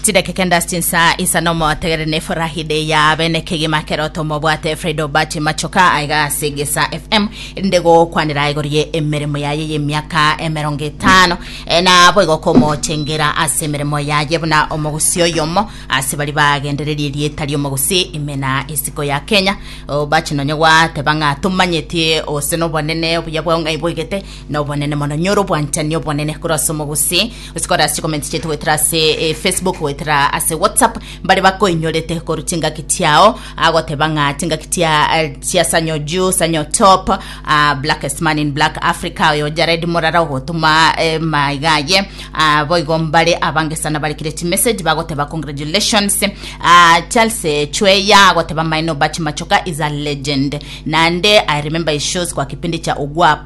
chidakika endasi chinsa isa nomotegere ne furahi de ya bene kegima keroto mobwate fredo bachi machoka aiga ase gesa fm erinde gokwanera igorie emeremo yaye y'emiaka emerongo etano Eh, na boigo komochengera ase emeremo yaye buna omogusi oyomo ase bari bagendererie erieta ri'omogusi ime na isiko ya kenya Oh, bachi nonye gwateba ng'a tomanyetie ose nobonene obuya bwao ng'ai boigete Nobonene mono nyora obwanchani obonene korwa ase omogusii gose korwa ase chikomenti chiaito goetera ase eh, facebook goetera ase whatsapp mbare bakoinyorete korwa chingaki chiao agoteba ng'a chingaki chia eh, chia sanyo juu sanyo top ah, blackest man in black africa oyo jared morara ogotuma eh, maigaye ah, boigo mbare abange sana barekire chimessage bagoteba congratulations ah, charles eh, chweya agoteba maino bachi machoka is a legend nande i remember his shows kwa kipindi cha ogwa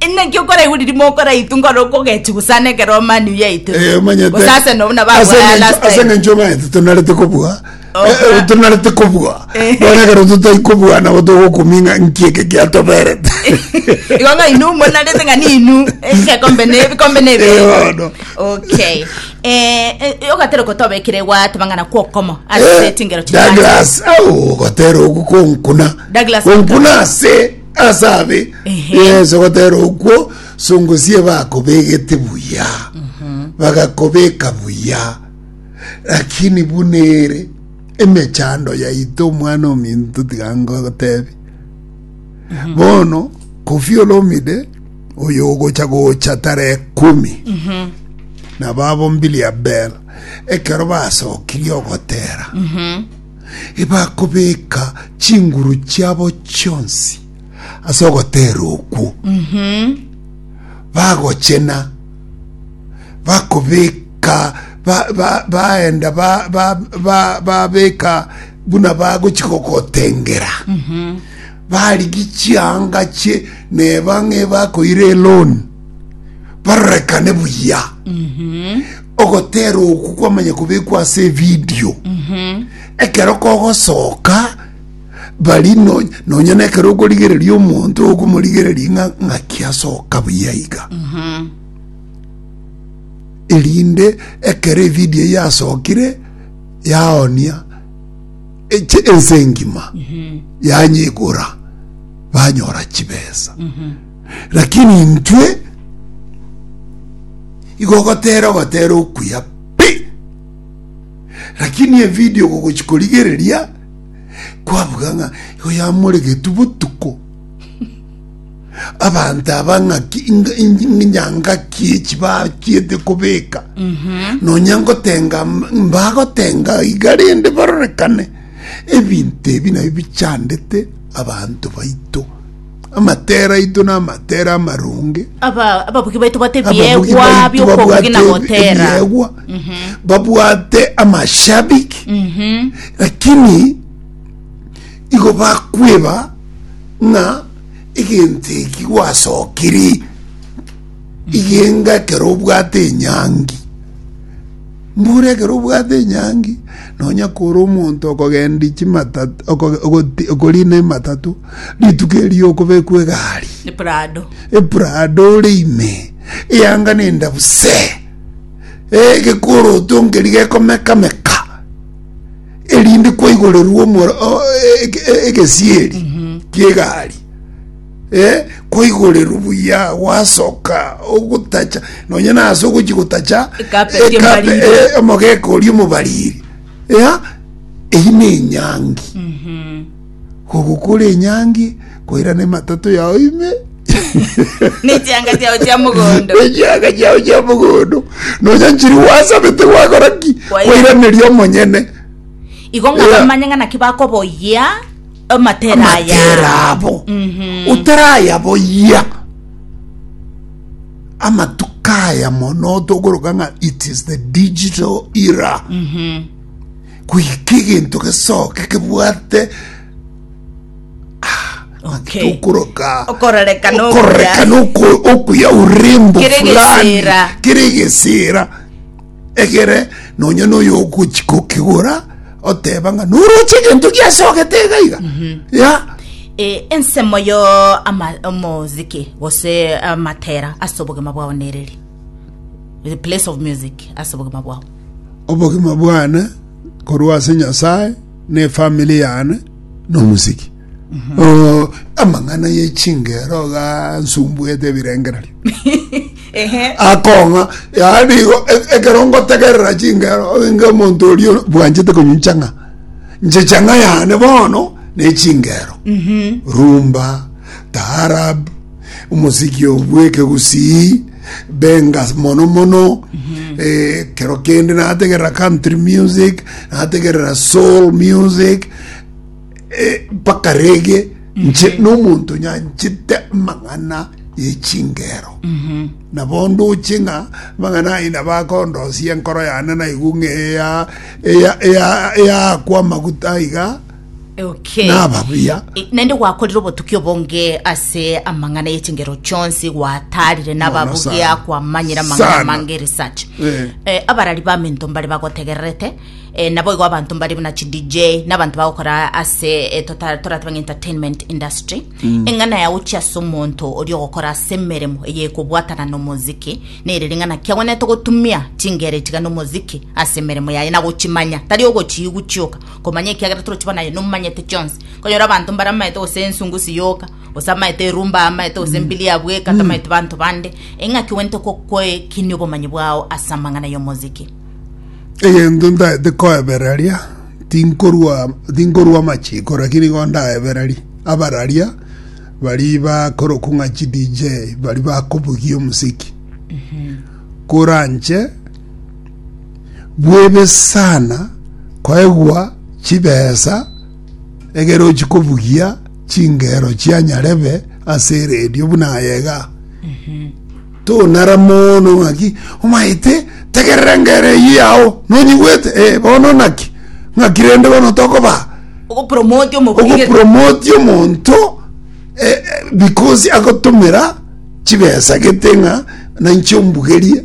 Inaki okoraiguri rimoko raitu ngoro okogechi gusana ekero omani yaitu. Eh, omanyete Gusase no na ase bagwa last eng'encho- ase time. eng'encho omanyete tonarete kobua Oh, Eh, eh, ah. tonarete kobua Eh. bono ekero totai kobua nabo togokuming'a nki eke giatoberete Igo ng'a inu monarete ng'a ni inu. Eh, Ekombe ne ebikombe ne ebi. Eh, bono. Okay. Eh, eh, ogatera okotobekera egwate mang'ana kwa okomo. Ase chingero chitano. Douglas au ogotera ogu konkuna Douglas konkuna ase ase abe Ehe. yeso gotera okwo songosie bakobegete buya bagakobeka buya lakini buna ere emechando yaito omwana ominto tiga ngotebi bono kofi olomide oyo ogocha gocha tara ekumi nabo abo mbili abel ekero basokirie ogotera ebakobeka chinguru chiabo chionsi ase ogoteera okwo, bagochena, bakobeka, ba, ba, baenda ba, ba, ba, babeka buna bagochi gogotengera barigi chianga chie neba ng'ebakoire eloni barorekane buya ogoteerwa oku kwamanya kobekwa ase evidio ekero kogosoka bari no- nonya na ekero okorigereria omonto okomorigereria ng'a ng'aki asoka buya iga erinde ekero evidio eyio yasokire yaonia eche ense engima yanyeigora banyora chibesa Lakini intwe igo ogotera ogotera okuya pi. Lakini evideo gogochi korigereria kwabuga ng'a igo yamoregetwe botuko abanto aba ng'aki inga- ingi- nyangaki echi bachiete kobeka nonya ngotenga m- mbagotenga iga rende barorekane ebinto ebi nabio bichandete abanto baito Amatera aito namatera amaronge. Aba- ababuki baito bate Ababugi ebiegwa baitu bi'okobugi babwate na gotera ebiegwa, babwate amashabiki lakini igo bakweba ng'a egento eki gwasokiri Igenga ekero obwate enyangi. Mbura ekero obwate enyangi, nonya kore omonto okogendia chimatatu, okorina ematatu, rituko erio okobekwa egari. Eprado. Eprado ore ime, eyanga nenda buse. Egekoroto nkeri gekomekameka, erinde kwaigorerwa omoro, egesieri, kiegari. Ee, kwaigoreru buya gwasoka ogotacha, nonya nase ogochi gotacha Ecarpet ecape- y'omobariri. e- omogeka oria omobariri. Ea, eyio na enyangi. Kogokora enyangi, koirana ematato yao ime, Nechianga chiao chia mogondo. echianga chiao chia mogondo, nonya nchiri gwasabete gwakora ki? Kwaira- Kwairaneria omonyene. Igo ng'a Ea. bamanye ng'a naki bakoboyia Amatera aya. amatera abo otarayaboyia amatuko aya mono tokoroka ng'a it is the digital era goika egento gesoke kebwate Okay. tokoroka Okororeka no okororeka okuya. nokuya urembo Kere fulani gesera. kere gesera Egere nonya noyo ogochi kokigora oteba ng'a noroche egento giasogete iga iga ya E, ensemo yo ama- omoziki gose amatera ase obogima bwao nereri the place of music ase obogima bwao obogima bwane korwa ase nyasaye ne efamili yane nomosiki Oh, amang'ana ye chingero gansumbuete ebirengererio ehe akong'a yaani igo- e- ekero ngotegerera chingero inge omonto orio bwanchete konywa nchang'a nche chang'a yane bono ne chingero rumba taarab Omosikio bw'ekegusii, benga mono mono ekero eh, kende nategerera country music nategerera soul music eh, mpaka rege nche mhm. n'omonto nyanchete amang'ana yechingero mhm. nabo nduche ng'a amang'ana ayi nabo akondosia enkoro yane naigu ng'a eya eya eya eya kwa maguta iga Okay. naba buya E, naende gwakorire obotuki obonge ase amang'ana y'echingero chionsi gwatarire Mono nababugia sana. kwamanyire amang'ana Sana. amange research Eh. Eh, abarari baminto mbare bagotegererete eh, nabo igo abanto mbare buna chi dj n'abanto bagokora ase eh, tota- torateba ng'a entertainment industry Mm. eng'ana yao chi ase omonto ori ogokora ase emeremo eye ekobwatana nomoziki nere ring'ana ki agwenerete gotumia chingere tiga nomoziki ase emeremo yaye nagochimanya tari ogochiigwa chioka Komanya ekiagera toroche bono aye nomanyete chionsi. Konyora abanto mbare amaete gose ensungusi yoka, gose amaete erumba aa amaete gose mbili ya bweka tamaete banto bande, eng'aki ogwenerete ko- koekinia obomanyi bwao ase amang'ana y'omoziki. Egento ntaete koebereria, tinkorua tinkorua amachiko lakini igo ndaebererie abararia baria bakorokwa ng'a chi DJ baria bakobugia omosiki. Koranche bwebe sana koegwa chibesa egere ochie kobugia chingero chia nyarebe ase eredio buna aye iga tonara mono ng'aki omaete tegerera engero eyio yao nonyigwete eh, bono naki ng'aki rende bono tokoba ogopromote omoburi gete ogopromoti omonto eh, eh, because agotomera chibesa gete ng'a nainche ombugerie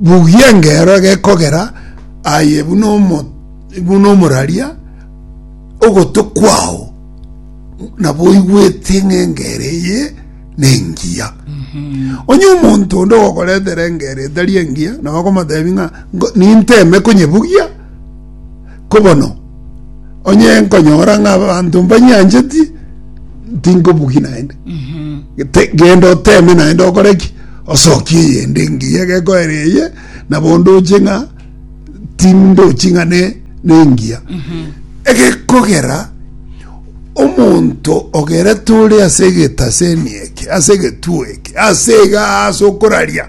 Bugia engero egekogera aye buna omo buna omoraria, ogotwe kwao nabo oigwete ng'a engero eye nengiya. Onye omonto onde ogokoretera engero etari engiya, nabo okomotebi ng'a ngo- ninteme konyebugia, Ko bono, onye nkonyora ng'a abanto mbanyancheti, tinkobugi naende. Te- Genda oteme naende okore ki? Osokie eyende engiya gekoera eye, na bondo oche ng'a tindochi ng'a ne- nengiya. Egekogera omonto ogerete ore ase egetasemi eke, ase egetuo eke, ase igaa ase okoraria,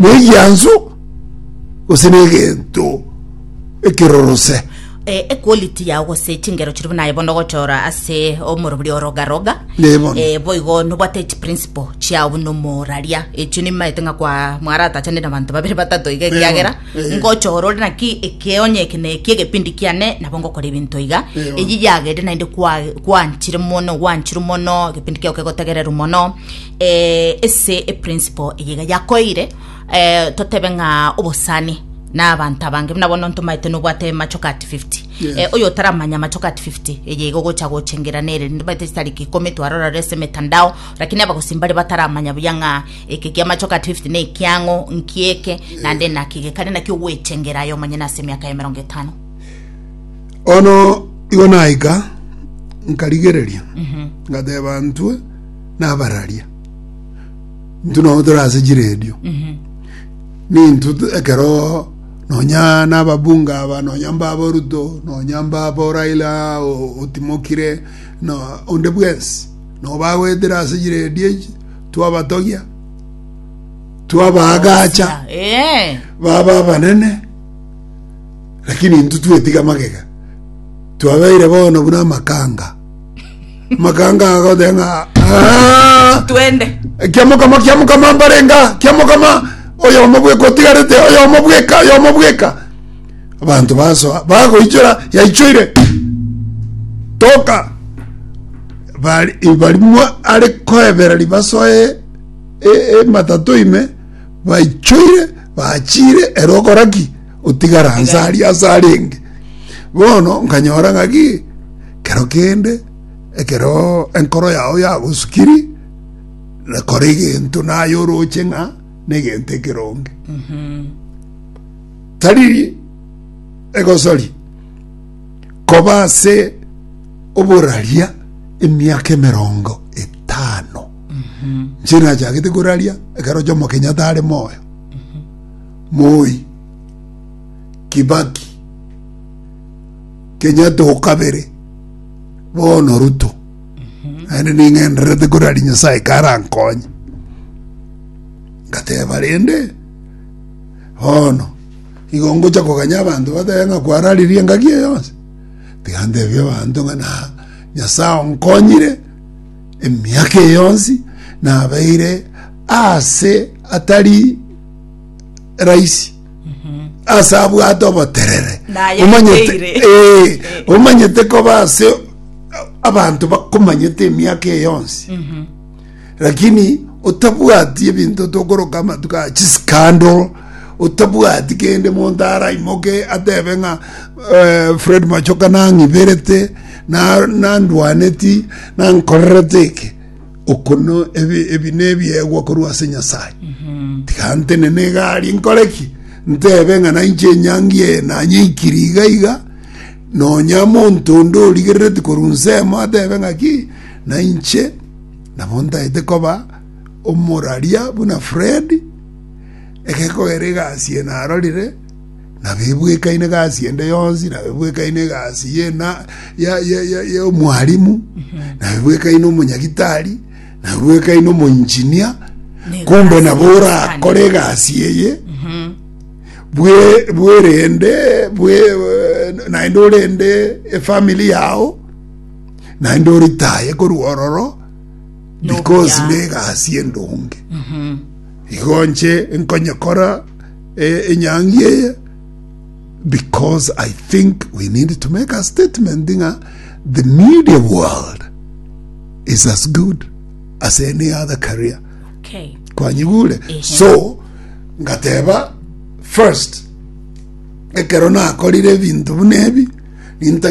negianso gose negento ekirorose eh, equality yao gose chingero chiri buna ibondo gochora ase omorobiri orogaroga Neibondo. eh, boigo nobwate chiprinciple chiao buna omoraria echio nimaete ng'a kwa mwaratachane na banto babere batato iga ekiagera eh. ngochora ore naki ekeonye eke na eki egepindi kiane nabo ngokora ebinto iga Neibondo. eyi yagere naende kwa- kwanchire mono gwanchirwe mono egepindi kiao kegotegererwa mono eh, ase eprinciple eye iga yakoeire eh, totebe ng'a obosani na abanto abange buna bono ntomaete nobwate machoka ati 50 Yes. Eh, oyo otaramanya machoka ati 50 eye iga ogocha gochengera nere ntomaete chitariki ikomi twarora rese emetandao lakini abagosi mbare bataramanya buya ng'a eke kia machoka ati 50 ne ekiang'o nkieke nande nakige kare nakio gwechengera aye omonyene ase emiaka ya emerongo etano ono igo naika nkarigereria ngateba ntwe nabararia intwe nabo tore ase chiredio nintwe tu- ekero nonya nababunga aba nonya mbaba oruto nonya mbaba oraila o- otimokire no onde bwensi nabo bagoetera ase chiredio echi twabatogia twabaagacha Eh, baba abanene lakini intwe twetiga magega twabeire bono buna amakanga Makanga agothe ng'a "Ah!" twende kiamokama kiamokama mbarenga kiamokama oyomo bweka otigarete oyomo bweka oyomo bweka abanto basoa bagoichora yaichoire toka bari barimwa are koebera ribasoe e- ematato ime baichoire bachire ero okoraki otigara nsa aria ase arenge bono nkanyora ng'aki Kero kende ekero enkoro yao yagosukiri, rekora egento naye oroche ng'a negento ekeronge. Tari egosori koba ase oboraria emiaka emerongo etano. Inche nachagete koraria ekero Jomo Kenyatta are moyo, Moi, Kibaki, Kenyatta o kabere, bono Ruto, naende ning'endererete kore aria Nyasae karankonye. Ngateba rende, bono igo ngocha koganya abanto batebe ng'a kwararirie engaki eye yonsi? Tiga ntebie abanto ng'a na Nyasae onkonyire emiaka eye yonsi, nabeire aase atari rahisi. ase abwate oboterere Naye omanyete ateire. eh, omanyete koba ase abanto bakomanyete emiaka eye yonsi lakini otabwati ebinto tokoroka amatuko a chiskando otabwati kende monto araimoke atebe ng'a eh, fred machoka nang'iberete na- nandwaneti nankorerete eke Okono ebi, ebi nebiegwa korwa ase Nyasaye. Tiga ntenene egari nkore ki? Ntebe ng'a nainche enyangi eye nanyeikiri iga iga, nonya monto onde origerereti korwa nsemo atebe ng'a ki, nainche nabo ntaete koba omoraria buna Fred, ekekogera egasi eye narorire, nabebwekaine egasi ende yonsi nabebwekaine egasi yena y'omwarimu nabebwekaine omonyagitari nabebwekaine omoinjinia kumbe nabo orakore egasi eye mhm. bwerende naende orende efamili yao naende oritaye korwa ororo because na egasi endonge mhm. igo nche nkonyekora eh, enyangi eye because I think we need to make a statement nga the media world is as good as any other career okay kwanyigure Ehe. so ngateba first ekero nakorire ebinto buna ebi ninta